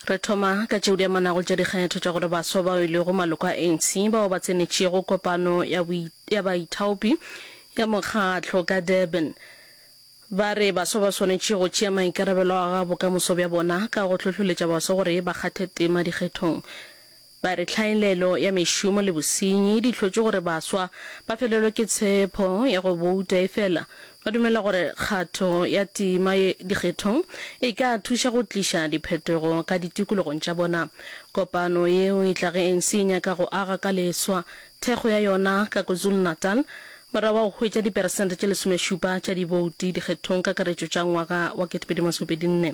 Re thoma ka tšeo di amanago tša dikgetho tša gore baswa bao e lego maloko a ANC bao ba tsenetšego kopano ya, ya baithaopi ya mokgatlo ka Durban ba re baswa ba swanetše go tšea maikarabelo a ga bokamoso bja bona ka go hlohloletša baswa gore ba kgathe tema dikgethong Ba re tlhaelelo ya mešomo le bosenyi di hlotše gore baswa ba felelwe ke tshepho ya go bouta efela ba dumela gore kgatho ya tema ye dikgethong e ka thuša go tliša diphetogo ka ditikologong tša bona. Kopano yeo e tla ge ANC e nyaka go aga ka leswa thekgo ya yona ka KwaZulu-Natal morago ga go hwetša diperesente tše lesomešupa tša dibouti dikgethong kakaretšo tša ngwaga wa 2024.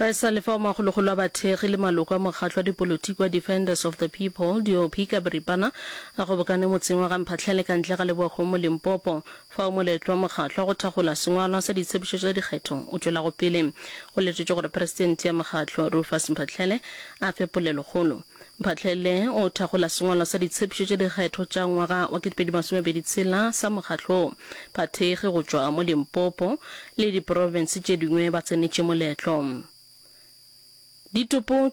Re sa le fao, magologolo a bathekgi le maloko a mokgatlo wa dipolotiki wa Defenders of the People, DOP, ka boripana a kgobokane motseng wa Gamphahlele ka ntle ga Lebokgong mo Limpopo, fao moletlo wa mokgatlo wa go thakgola sengwalwa sa ditshepišo tša dikgetho o tšwelago pele. Go letetšwe gore Presidente ya mokgatlo, Rufus Mphahlele, a fe polelokgolo. Mphahlele o thakgola sengwalo sa ditshepšo tša dikgetho tša ngwaga wa 2026 sa mokgatlo wo. Bathekgi go tšwa mo Limpopo le diprofense tše dingwe ba tsenetše moletlo. Ditopo.